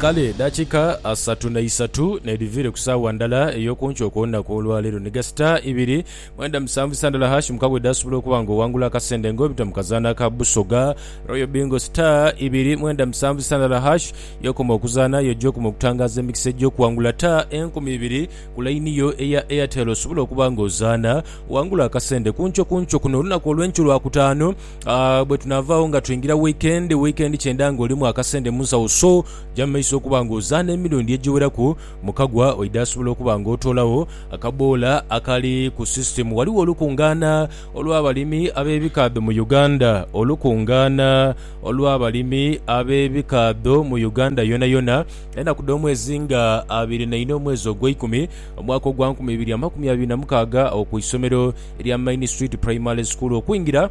Kale edakika asatu na isatu nedhiviire ku saawa ndala ey'okunkyo okw'olunaku olwaleero ni gasita ibiri mwenda musanvu isa ndala hash mukaaga edhasobola okuba nga owangula akasende nga obita mu kazaanho aka Busoga Royal Bingo Star ibiri mwenda musanvu isa ndala hash y'okoma okuzaanha aye oja okoma okutangaaza emikisa egy'okuwangula ta enkumi ibiri ku layini yo eya Airtel osobole okuba nga ozaanha owangule akasende kunkyo kunkyo kuno olunaku olw'enkyo Lwakutaano. Uh, bwe tunaavaawo nga twingira wiikendi, wiikendi kyenda ng'olimu akasente mu nsawo so ja mu maiso okuba ng'ozaana emirundi egiweraku mu kagwa oidha asobola okuba ng'otoolawo akaboola akali ku sisitemu. Waliwo olukungaana olw'abalimi ab'ebikaadho mu Uganda. Olukungaana olw'abalimi ab'ebikaadho mu Uganda yonayona enaku dh'omwezi nga abiri naina omwezi ogweikumi omwaka ogwa nkumi ibiri amakumi abiri na mukaaga awo ku isomero lya Main Street Primary School. Okwingira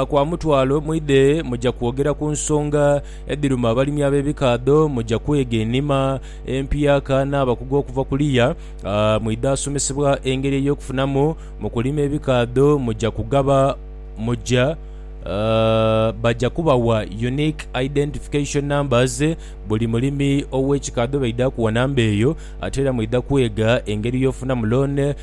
kwa mutwalo mwidhe muja kwogera ku nsonga edhiruma abalimi ab'ebikaadho, muja kwega enima empyaka n'abakugu okuva kuliya. Mwidha asomesebwa engeri ey'okufunamu mu kulima ebikaadho, muja kugaba muja baja kubawa Unique Identification Numbers. Buli mulimi ow'ekikaadho baidha kuwa namba eyo. Ate era mwidha kwega engeri y'ofunamu loan.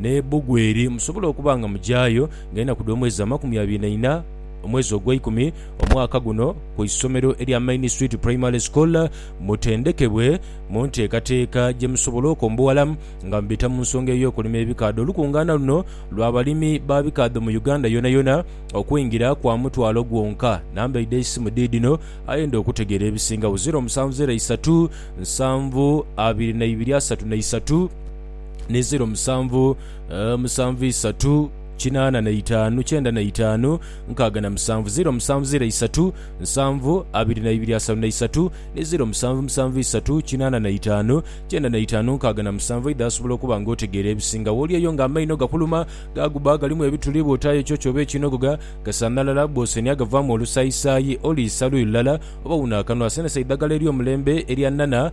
n'e Bugweri musobole okuba nga mugyayo nga enaku dh'omwezi amakumi abiri na ina omwezi ogweikumi omwaka guno ku isomero erya Main Street Primary School mutendekebwe mu nteekateeka gye musobola okombowala nga mubita mu nsonga ey'okulima ebikaadho. Olukungaana luno lwa balimi ba bikaadho mu Uganda yonayona okwingira kwa mutwalo gwonka. Namba eidha eisimu dhiidhino aye ndha okutegeera ebisingagho, ziro musanvu zero isatu nsanvu abiri na ibiri asatu na isatu. ni ziro musanvu musanvu isatu kinaana na itaanu kyenda na itaanu nkaaga na musanvu ziro musanvu ziro isatu nsanvu abiri na ibiri asatu na isatu ni ziro musanvu musanvu isatu kinaana na itaanu kyenda na itaanu nkaaga na musanvu eidha asobola okuba nga otegeera ebisinga wooli eyo nga amaino gakuluma gaaguba galimu ebituli bwotaayo ekyo kyoba ekinogoga gasanhalala bwosenhya gavaamu olusayisaayi oliisa luyi lulala oba wuno akanwa senesa idhagala eryomulembe erya nana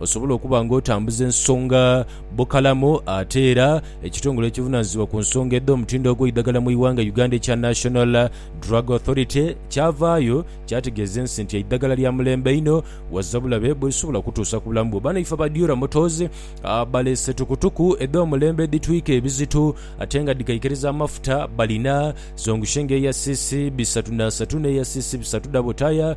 Osobola okuba nga otambuza ensonga bukalamu ate era ekitongole ekivunanizibwa ku nsonga edh'omutindo ogw'eidhagala mu ighanga Uganda ekya National Drug Authority kyavaayo kyategeeza ensi nti eidhagala lya mulembe inho waza bulabe bwerisobola kutuusa ku bulamu bwo. Banaife aba Diora Motors baleese tukutuku edh'omulembe edhitwika ebizito ate nga dhikaikiriza amafuta. Balina zongushenga eya cc bisatu na asatu n'eya cc bisatu dhabo taaya.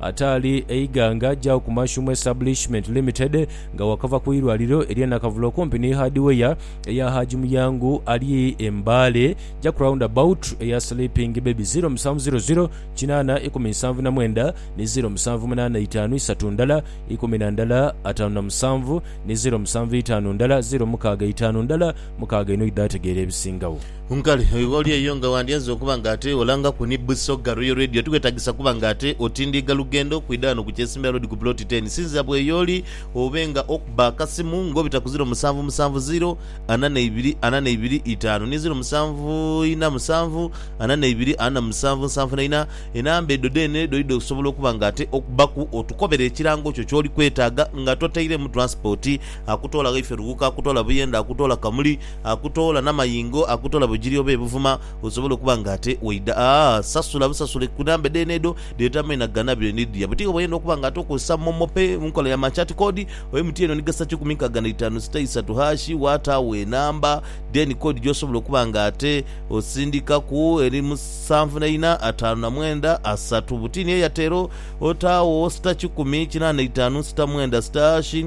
Ataali e Iganga agyagho ku Mashuumu Establishment Limited nga wakava ku irwaliro erye Nakavule okumpi ni Hardware eya Haji Muyangu ali e Mbale Jack Round about eya Sleeping Baby ziro musanvu ziro ziro kinaana ikumi nsanvu na mwenda ni ziro musanvu munaana itaanu isatu ndala ikumi na ndala ataanu na musanvu ni ziro musanvu itaanu ndala ziro mukaaga itaanu ndala mukaaga inho idho ategeera ebisingagho. Nkale oli eyo nga wandyaze okuba nga ate olangaku ni Busoga Royal Radio. Tiwetagisa kuba nga ate otindiiga lugendo kwidha ghano ku Kyesimira Road ku Plot Ten. Sinzira bweyooli obe nga okuba akasimu nga obita ku ziro musanvu musanvu ziro ana neibiri ana neibiri itaanu ni ziro musanvu ina musanvu ana neibiri ana musanvu nsanvu na ina. Enamba edho dheene dhoidha osobola okuba nga ate okubaku otukobere ekirango kyo kyoli kwetaaga nga totairemu transport. Akutoola Ghaiferuwuka, akutoola Buyende, akutoola Kamuli, Akutoola namayingo, akutoola bugiri oba ebuvuma osobole okuba nga ate waidha aa sasula busasule kunambe dheene edho dhetamye nagana byo nidhia buti oba oyenda okuba nga ate okozesa momo pay munkola ya machat code oyo mtn oni gasa kikumi nkaga naitaanu sita isatu hashi wataagho enamba then code gyosobola okuba nga ate osindikaku eri musanvu naina ataanu namwenda asatu butini eyatero otaagho sita kikumi kinaana itaanu sita mwenda sita hashi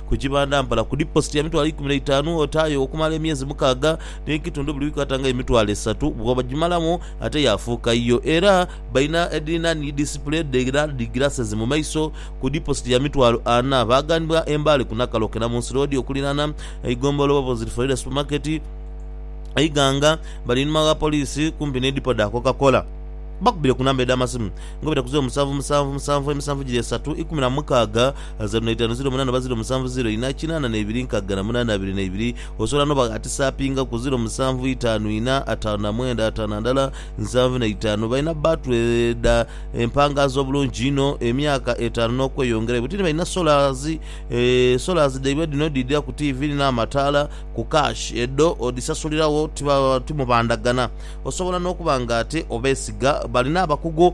Ku kibanda mpala ku diposit ya mitwalo eikumi n'eitaanu otaayo okumala emyezi mukaaga n'ekitundu buli wiiki ata nga emitwalo esatu bw'obagimalamu ate yaafuuka yiyo. Era balina edhirina ni disipule edh'era dhi glasses mu maiso ku diposit ya mitwalo ana. Baaganibwa e Mbale ku Nakaloke na Munsi Road okuliraana eigombolola oba Bozil Ferreira Supermarket e Iganga. Bali einhuma wa poliisi kumpi ni dipo dha Coca Cola. Bakubire ku namba edh'amasimu nga obwira ku zeero musanvu musanvu musanvu emisanvu giri esatu ikumi na mukaaga Zeru na itaanu ziro munaana oba ziro musanvu ziro ina kinaana na ibiri nkaga na munaana abiri na ibiri osobola n'obaghatisa apingaku ziro musanvu itaanu ina ataanu na mwenda ataanu na ndala nsanvu na itaanu. Balina bbaatu edha empangaazi obulungi inho, emyaka etaanu n'okweyongerayo. Ti balina solazi. Solazi dhaibwe dhino dhidha ku tiivi n'amataala ku kaashi. Edho odhisasuliragho, ti mubandhagana. Osobola n'okuba ng'ate obeesiga. Balina abakugu.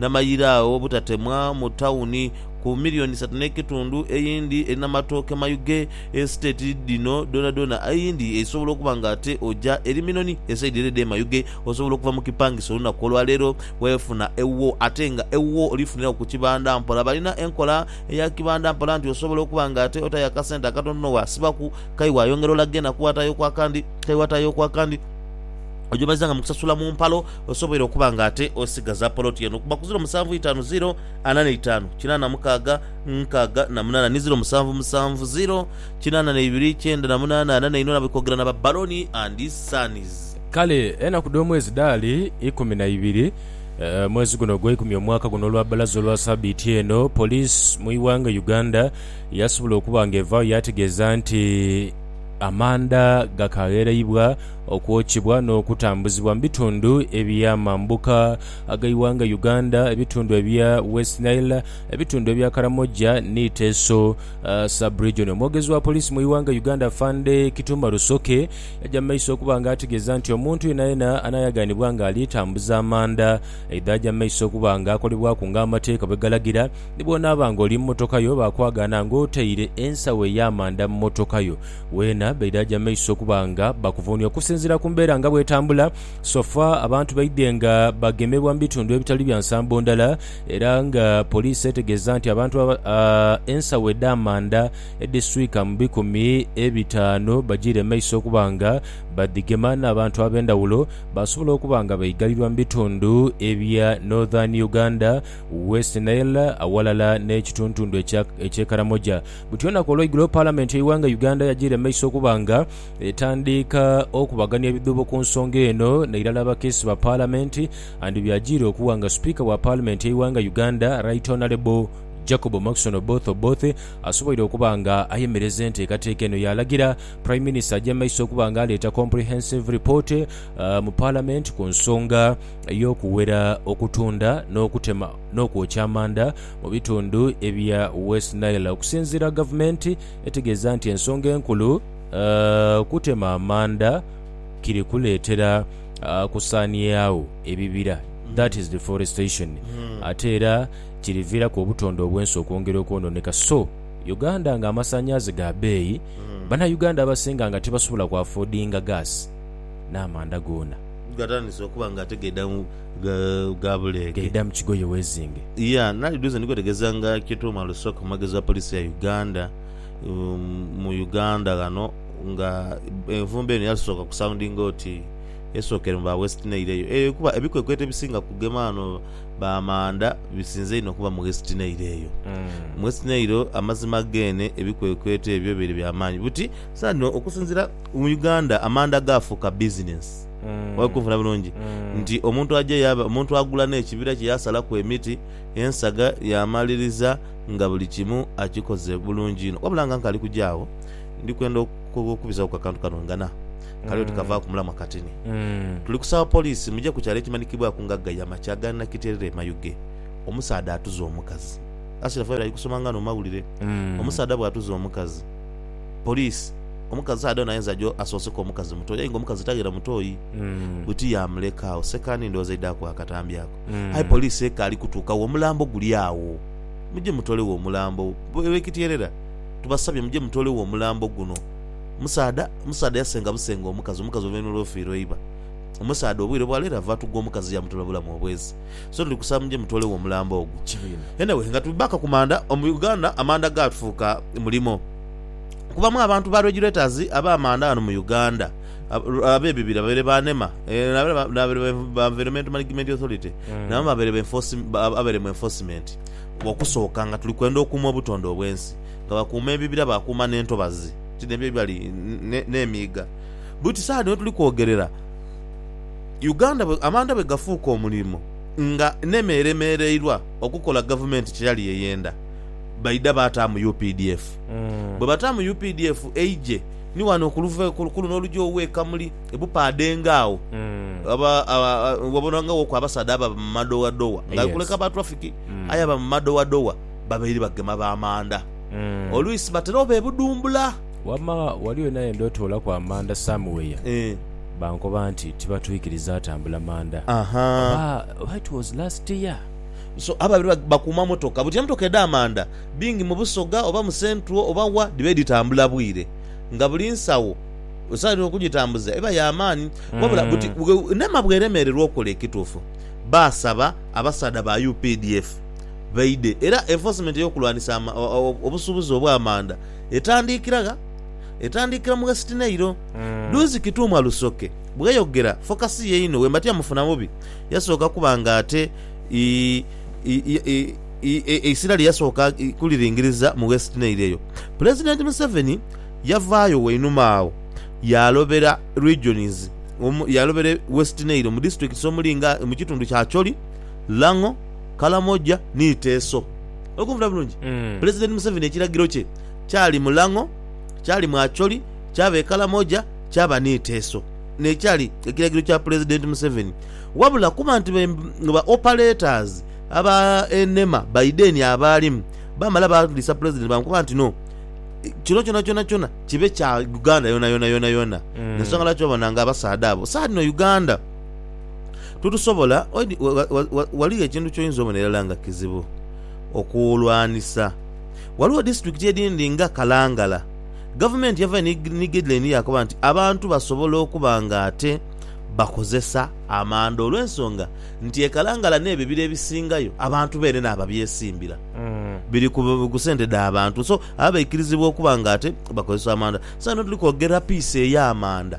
n'amayira agho obutatemwa mu tawuni ku milioni isatu n'ekitundu, eyindi eri n'amatooke mayughe, esiteeti dhino dhoonadhoona eyindi eisobola okuba nga ate oja eri Minoni esaidi ere edh'e Mayughe, osobola okuva mu kipangisa olunaku olwaleero wefuna ewuwo ate nga ewuwo olifuniraku ku kibanda mpola. Balina enkola eya kibanda mpola nti osobola okuba nga ate otayo akasente akatontono waasibaku kai wayongera olaga enaku watayoku akandi kai watayoku akandi oja omazanga mu kusasula mu mpalo Osoboire okuba nga ate osigaza poloti eno kuba ku ziro musanvu itaanu ziro ana na itaanu kinaana mukaaga nkaaga na munaana ni ziro musanvu musanvu ziro kinaana na ibiri kyenda na munaana ana na inho nabwe kogera na ba Baloni and Sons. Kale enaku dh'omwezi dhaali ikumi na ibiri, mwezi guno ogweikumi omwaka guno olwa bbalaza olwa sabiiti eno, police mu ighanga Uganda yasobola okuba nga evaagho yategeeza nti Amanda gakaaghereibwa Okwokibwa n'okutambuzibwa mu bitundu ebya mambuka ag'eighanga Uganda, ebitundu ebya West Nile, ebitundu ebya Karamoja ni Teso Sub-region. Omwogezi wa Poliisi mu ighanga Uganda Afande Kitumba Rusoke yaja mu maiso okuba nga ategeeza nti omuntu yenayena anayagaanibwa nga ali tambuza amanda aidha aja mu maiso okuba nga akolebwaku nga amateeka bwegalagira ni bwonaaba nga oli mu motokayo bakwagaana nga otaire ensawo ey'amanda mu motokayo Weena baidhaja maiso okuba nga bakuvuunhia okusinziira ku mbeera nga bw'etambula, sofa abantu baidhe nga bagemebwa mu bitundu ebitali bya nsambo ndala era nga poliisi etegeeza nti abantu ensawo edh'amanda edhiswika mu bikumi ebitaanu bajiire maiso okuba nga badhigema n'abantu ab'endhawulo baasobola okuba nga baigalirwa mu bitundu ebya Northern Uganda, West Nile awalala n'ekituntundu eky'e Karamoja. Buti olunaku olweigulo Palamenti y'eighanga Uganda yajiira mu maiso okuba nga etandiika okubagania ebidhuubo ku nsonga eno n'eirala abakiisi ba Palamenti and byajiira okuwa nga Sipiika wa Palamenti y'eighanga Uganda Right Honourable Jacob Maxon Oboth Oboth asoboire okuba nga ayemereza enteekateeka eno yaalagira Prime Minister aje mu maiso okuba nga aleeta comprehensive report mu Palamenti ku nsonga y'okuwera okutunda n'okutema n'okwokya amanda mu bitundu ebya West Nile okusinziira gavumenti etegeeza nti ensonga enkulu kutema amanda kiri kuleetera kusaaniagho ebibira that is deforestation ate era kiriviiraku obutonde obwensi okwongera okwononeka so Uganda nga amasanyaze ga beeyi banauganda abasinga nga tibasobola ku affordinga gas n'amanda goona. gha buleege. Gaida mu kigoye wezinge. Yeah nali duze ndikwetegeza nga Kituuma Lusooka omwogezi wa police ya Uganda mu Uganda ghano nga envumbo eno yasooka ku soundinga oti esookere mu ba West Nile eyo eyo kuba ebikwekweto ebisinga kugema ghano ba Manda bisinze inho kuba mu West Nile eyo. Mu West Nile amazima geene ebikwekweto ebyo bibaire bya maanyi buti saano okusinzira mu Uganda amanda gaafuuka bizinensi. Mwali kunfuna bulungi? Nti omuntu aja yaaba, omuntu agula n'ekibira kye yaasalaku emiti, ensaga, yaamaliriza nga buli kimu akikoze bulungi inho. Wabula nga nkali kuja agho, ndi kwenda okukubizagho ku akantu kano ngana. Kali oti kavaaku mulamwa katini. Tuli kusaba poliisi muje ku kyalo ekimanikibwaku nga Gaya makya ga Nakiterera e Mayuge. Omusaadha atuze omukazi. Ashiraf abeere ali kusoma nga no mawulire. Omusaadha bw'atuze omukazi. Police omukazi saada ono ayinza jo asoose ku omukazi mutoyi aye nga omukazi taghera mutoyi buti yamuleka agho sekandi ndhoghoza eidha kugha akatambi ako aye police ekaali kutuuka gho omulambo guli agho muje mutolegho omulambo Bekityerera tubasabye muje mutolegho omulambo guno musaadha musaadha yasenga busenga omukazi omukazi oluvainhuma lwofiirwa eiba omusaadha obwire bwaleero ava atugwa omukazi yamutola bulamu obwezi. so tuli kusaba muje mutoolegho omulambo ogwo. Anyway nga tuli back ku manda, mu Uganda amanda gaafuuka mulimo. Kubamu abantu ba regulators ab'amanda ghano mu Uganda ab'ebibira babaire ba nema n'abaire ba Environmental Management Authority nabo babaire mu enforcement. Okusooka nga tuli kwenda okuuma obutonde obw'ensi nga bakuuma ebibira baakuuma n'entobazi ti n'ebyo ebibali n'emiiga. Buti saagha dhino tuli kwogerera. Uganda bwe amanda bwe gafuuka omulimo nga neme eremereirwa okukola gavumenti kyeyali yeyenda, baidha baataamu updf. Bwe bataamu updf eije ni wano ku luva ku luno olugya owe e Kamuli e Bupaadenge agho aba aba wabona nga woku abasaadha ababa mu madowadowa nga kuleka ba traffic aye aba mu madowadowa babaire bagema ba manda. Olwisi batera oba e Budumbula. Wama wali wena yenda otoolaku amanda somewhere Eeh. bankoba nti tibatwikiriza atambula manda Ahaa. oba oba it was last year. So abo abiri bakuuma motoka buti emotoka edha manda bingi mu Busoga oba mu Central oba wa dhiba edhitambula bwire nga buli nsawo esawa yona okujitambuza eba ya maani wabula buti nema bweremererwa okola ekituufu baasaba abasaadha ba updf baidhe era enforcement eyokulwanisa obusuubuzi obwa manda Etandiikira gha? Etandiikira mu Wesitineiro. Duuzi Kituuma Lusoke bweyogera fokasi ye inho wemba tiyamufuna bubi. Yasooka kuba nga ate eisira lye yasooka kuliringiriza mu Wesitineiro eyo. Pulezidenti Museveni yavaayo wainuma agho yaalobera Regions yaalobera Wesitineiro mu disiturikiti omuli nga mu kitundu kya Acholi, Lang'o, Kalamoja ni Teso. Oli kunvuna bulungi? Pulezidenti Museveni ekiragiro kye kyali mu Lang'o, kyali mu Acholi, kyaba e Kalamoja, kyaba ni Teso. N'ekyali ekiragiro kya Pulezidenti Museveni. Wabula kuba nti ba operators aba nema Biden abaalimu baamala baadhisa Pulezidenti baamukoba nti no, kino kyonakyonakyoona kibe kya Uganda yonayona yonayona. Y'ensonga lwaki obona ng'abasaadha abo saadhino Uganda. Tutusobola, oid, ghaligho ekintu ky'oinza obona irala nga kizibu okulwanisa. Ghaligho disiturikiti edindi nga Kalangala, gavumenti yavayo ni gaideline yaakoba nti abantu basobola okuba nga ate bakozesa amanda olw'ensonga nti e Kalangala n'ebibira ebisingayo abantu beene n'ababyesimbira biri ku sente dha bantu so abo baikirizibwa okuba nga ate bakozesa amanda. Saino tuli kwogera piisi ey'amanda.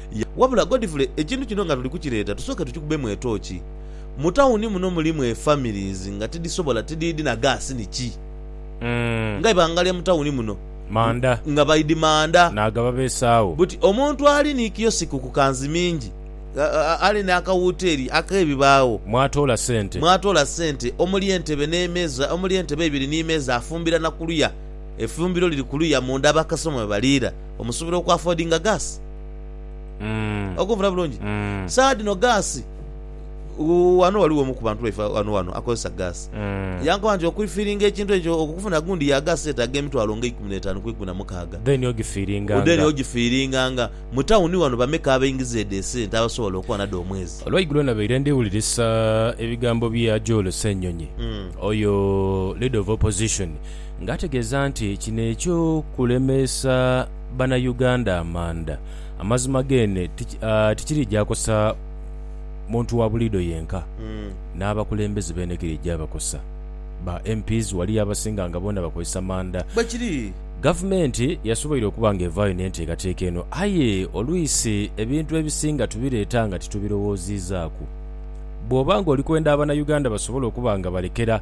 Yah, wabula Godfrey ekintu kino nga tuli kukireeta tusooke tukikubemu etooki. Mu tawuni muno mulimu e families nga tidhisobola, tidhiidhi na gaasi ni ki. Nga ibanga lya mu tawuni muno. Manda. Nga baidhi manda. Naaga babeesaagho. Buti omuntu ali ni kiyosiki ku kanzi mingi, ali n'akawuteeri ak'ebibaagho. Mwatoola sente. Mwatoola sente omuli entebe n'emeeza, omuli entebe ibiri ni meeza afumbira na kuluya, efumbiro liri kuluya munda abakasitoma mwe baliira. Omusuubira oku affordinga gas? Okunfuna bulungi? Saagha dhino gas, ghano ghaligho omu ku bantu baife ghano ghano akozesa gas. Yankoba nti okuifiringa ekintu ekyo, okufuna gundi ya gas yetaaga emitwalo nga eikumi n'etaanu ku eikumi na mukaaga. Then ogifiringanga. Mu tawuni ghano bameka abaingiza edho esente abasobola okuba nadho omwezi? Olwaigulo nabaire ndi wulirisa ebigambo bya Joel Ssenyonyi, oyo Leader of Opposition, nga ategeeza nti kino ekyo kulemeesa bana Uganda amanda amazima geene tikiri gyakosa muntu wa buliido yenka n'abakulembeze beene giri gyabakosa. Ba MPs waliyo abasinga nga boona bakozesa manda. Gavumenti yasoboire okuba nga evaayo n'enteekateeka eno aye olwisi ebintu ebisinga tubireeta nga titubirowooziizaaku. Bw'oba ng'oli kwenda abana Uganda basobole okuba nga balekera.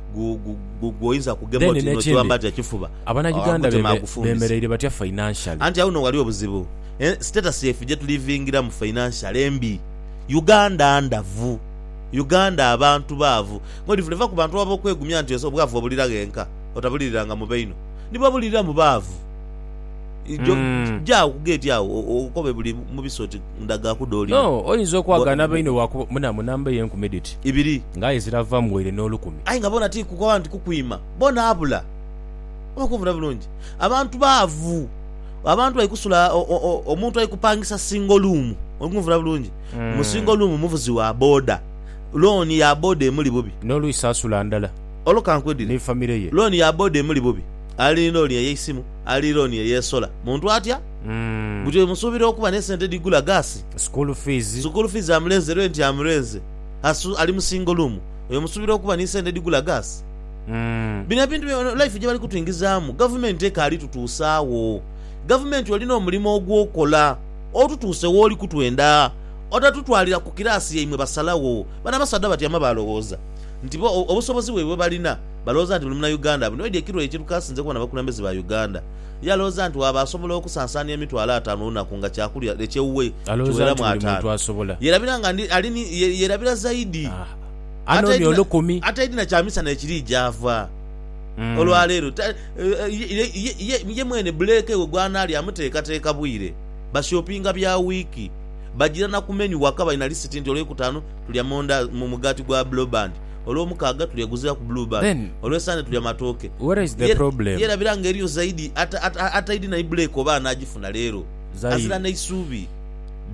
gwoinza kugema oti nokiwamba ati ekifuba omutima agufumbisa anti agho no ghali obuzibu status yaife gyetulivingiramu financially mbi Uganda ndavu Uganda abantu baavu mwedivula eva kubantu abo abokwegumya nti obwavu obulira ghenka otabuliriranga mubaino nibabulirira mubaavu. Mm. Jaagho ku geeti agho o- o- okobe buli mu biso oti ndagaaku dh'oli. No, oyinza okwagana Bwa- bainhe bwakuba munamu namba eye enkumi dhiti, Ibiri. nga aye zirava mu waire n'olukumi. Aye nga boona ti kukoba nti kukwima. Boona abula. Oba kunvuna bulungi? Abantu baavu. Abantu bali kusula o- o- o- omuntu ali kupangisa single room. Oli kunvuna bulungi? Mm. Mu single room muvuzi wa boda. Loan ya boda emuli bubi. N'olwisi asula ndala Olwo kankwedhire. ni famire ye. Loan ya boda emuli bubi. Ali ni loan eye eisimu. ali looni eyeesola. Muntu atya buti oyo musuubira okuba n'esente edhigula gaasi, School fees. sukuulu fiizi amulenze, renti amulenze, asu, ali mu singo luumu, oyo musuubira okuba ni sente edhigula gaasi? Bino ebintu byona life gye bali kutwingizaamu, Gavumenti ekaali tutuusa agho. Gavumenti olina omulimo ogw'okola otutuuse w'oli kutwenda, otatutwalira ku kiraasi yaimwe basalagho. Bano abasaadha batyama baalowooza nti bo obusobozi bwaibwe bwe balina. Balowooza nti buli Munauganda abinoidhe ekiro ekyo ekyo kaasinze kubona abakulembeze ba Uganda. Ye alowooza nti waaba asobola okusansaania emitwalo ataanu olunaku nga kyakulya ekyewuwe kiweramu ataanu. Yerabira nga ndi ali ni, ye, yerabira zaidi. Ataidhi na, ataidhi na kyamisana ekiri gy'ava olwa leero. Ta, ye, ye, ye, ye mwene buleeke we gw'anaalya amuteekateeka bwire. Bashopinga bya wiiki. Bagira na ku menu waka balina lisiti nti olw'ekutaanu tulya monda, mu, mugaati gwa bloband. Olwomukaaga tulya guzira ku blue band. Then Olwe Sunday tulya matooke. where is the Ye problem? yerabira nga eriyo zaidi ata, ata, ataidi na ibreeka oba anagifuna leero. Azira Zaidi. neisuubi.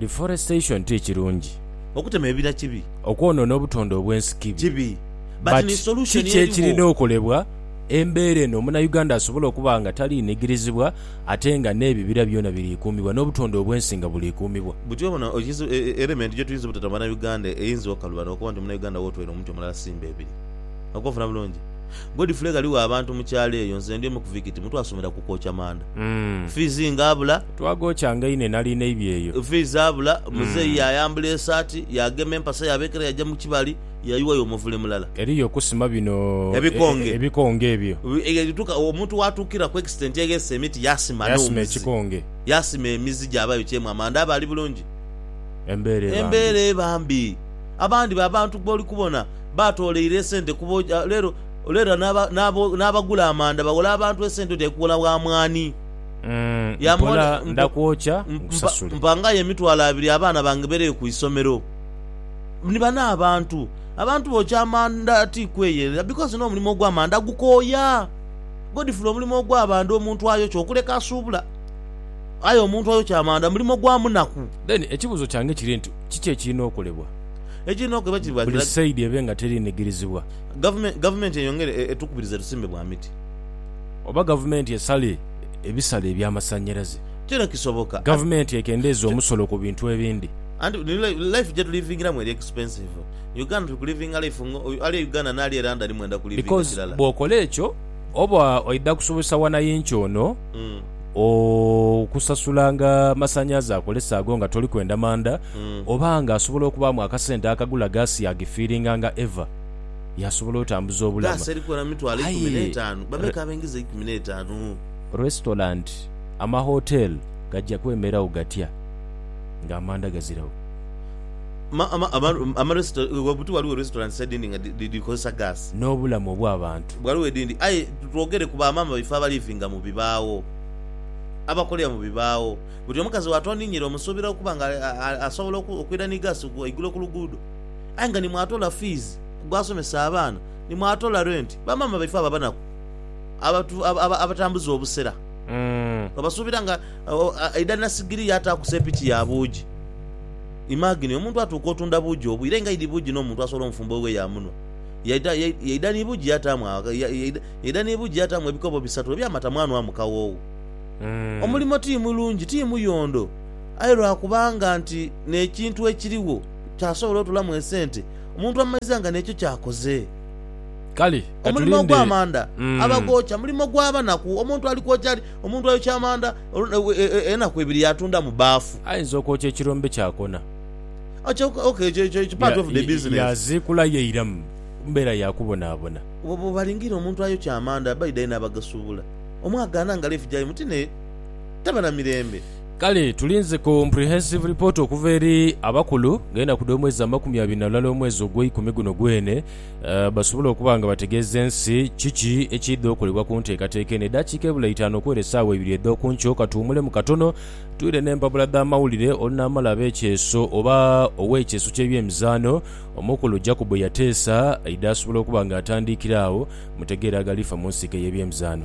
Deforestation ti kirungi. Okutema ebira kibi. Okwonoona obutonde obwensi kibi. Kibi. But ni But solution kiki eriwo. ekirina okolebwa embeera eno muna Uganda asobole okuba nga taliinigirizibwa? Ate nga n'ebibira byona biriikuumibwa, n'obutonde obw'ensi nga buliikuumibwa. Buti obona okizu elementi gyetuyinza obutata mu banauganda eyinza okaluba nokuba nti munauganda wotwere omuti omulala simba ebiri. Okunfuna bulungi? Godfrey ghaligho abantu mu kyalo eyo nze ndi omu ku vikiti mu twasomera ku kwokya manda. Fiizi nga abula. Twagookya nga ine nali neibye eyo. Fiizi abula. Muzeeyi yayambula esaati, yagema empasa yabeekera yaja mu kibali. yayuwayo omuvule mulala. Eriyo okusima bino ebikonge ebyo. Omuntu waatuukira ku extent eghese emiti yaasima n'omuzi, yaasima emizi gyaba yokyemu amanda aba ali bulungi? Embeera eba mbi. Abandi b'abantu b'oli kubona baatooleire esente kubo. Leero leero n'abagula amanda baghola abantu esente oti ali kughola wa mwaani. Mpangayo emitwalo abiri abaana bange beereyo ku isomero. Ni bano abantu. Abantu bookya amanda ti kweyerera because n'omulimo ogw'amanda gukooya. Godfrey omulimo ogw'amanda omuntu ayokya okuleka asuubula aye omuntu ayokya amanda mulimo gwa munaku. Then ekibuzo kyange kiri nti kiki ekirina okolebwa Ekirina okolebwa kiri bati buli side ebe nga terinigirizibwa. Gavumenti gavumenti eyongere etukubirize tusimbe bwa miti. Oba gavumenti esale ebisale ebyamasanyalaze. Kino kisoboka. Gavumenti ekendeeze omusolo ku bintu ebindi. Anti ni life jetulivingiramu eri expensive. Uganda tuli kulivinga life nga ali e Uganda n'ali e London mwenda kulivinga Because kirala. bw'okola ekyo oba oidha kusobozesa wanayinki ono okusasulanga amasanhalaze akozesa ago nga toli kwenda manda oba nga asobola okubaamu akasente akagula gaasi yaagifiiringa nga eva yaasobola otambuza obulama. Gaasi eri kuwera mu mitwalo eikumi Aye n'etaanu. Bameka abaingiza eikumi n'etaanu? restaurant, amahotel gajja kwemeragho gatya? nga amanda gaziregho. Ghaligho restaurants edhindi nga dhikozesa gas. N'obulamu obw'abantu. Ghaligho edhindi aye twogere ku ba maama baife abalivinga mu bibaagho, abakolera mu bibaagho. Buti omukazi wa twaninyira omusuubira okuba nga asobola okwira ni gas eigulo ku luguudo aye nga ni mwatoola fees gw'asomesa abaana, ni mwatoola rent. Ba maama baife abo abanaku abatambuza obusera twabasuubira nga. Agho aidha nasigiri yaataaku seepiki ya buugi. Imagine, omuntu atuuka otunda buugi obwo, ire nga idi buugi n'omuntu asobola omufumba oghughe yaamunhwa. Yaidha, yaidha ni buugi yaataamu, yaidha ni buugi yaataamu ebikobo bisatu eby'amata mwanhwamu kawoowo. Omulimo ti mulungi, ti muyondo, aye lwa kubanga nti n'ekintu ekirigho kyasobola otolamu esente, omuntu amaiza nga n'ekyo ky'akoze. Kale, ka tulinde. Omulimo ogw'amanda, abagookya, mulimo gwa banaku. Omuntu ali kwokya ali, Omuntu ayokya amanda enaku ibiri yaatunda mu baafu. Ayinza okwokya ekirombe kyakona. Yaaziikula yaira mu mbeera ya kubonaabona. Bw'obalingiira omuntu ayokya amanda, baidha inho abagasubula. Omwagaana nga life gyaimwe ti n'eyo, taba na mirembe. Kale tulinze comprehensive report okuva eri abakulu ng'enaku dh'omwezi amakumi abiri na lulala omwezi ogweikumi guno gwene. basobole okuba nga bategeeza ensi kiki ekiidha okolebwa ku nteekateeka eno. Edaakiika ebula itaanu okwera esaawa ibiri edh'oku nkyo, ka tuwumulemu katono twire n'empapula dh'amawulire. Olunaamala ab'ekyeeso oba ow'ekyeeso ky'ebyemizaano omukulu Jacob yateesa aidhe asobole okuba nga atandiikira agho, mutegeere agalifa mu nsike y'ebyemizaano.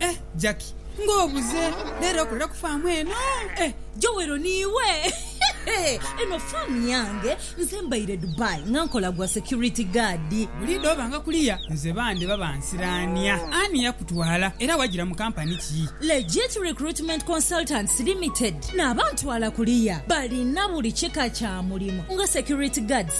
Eh Jackie nga obuze lero okolera ku faamu eno eh. Joel ni iwe eno faamu yange nze mbaire Dubai nga nkola gwa security guard. Buli idhobanga kuliya nze bande baba nsiraania. Ani yakutwala era wajira mu company ki? Legit Recruitment Consultants Limited n'abantwala kuliya balina buli kika kya mulimu nga security guards.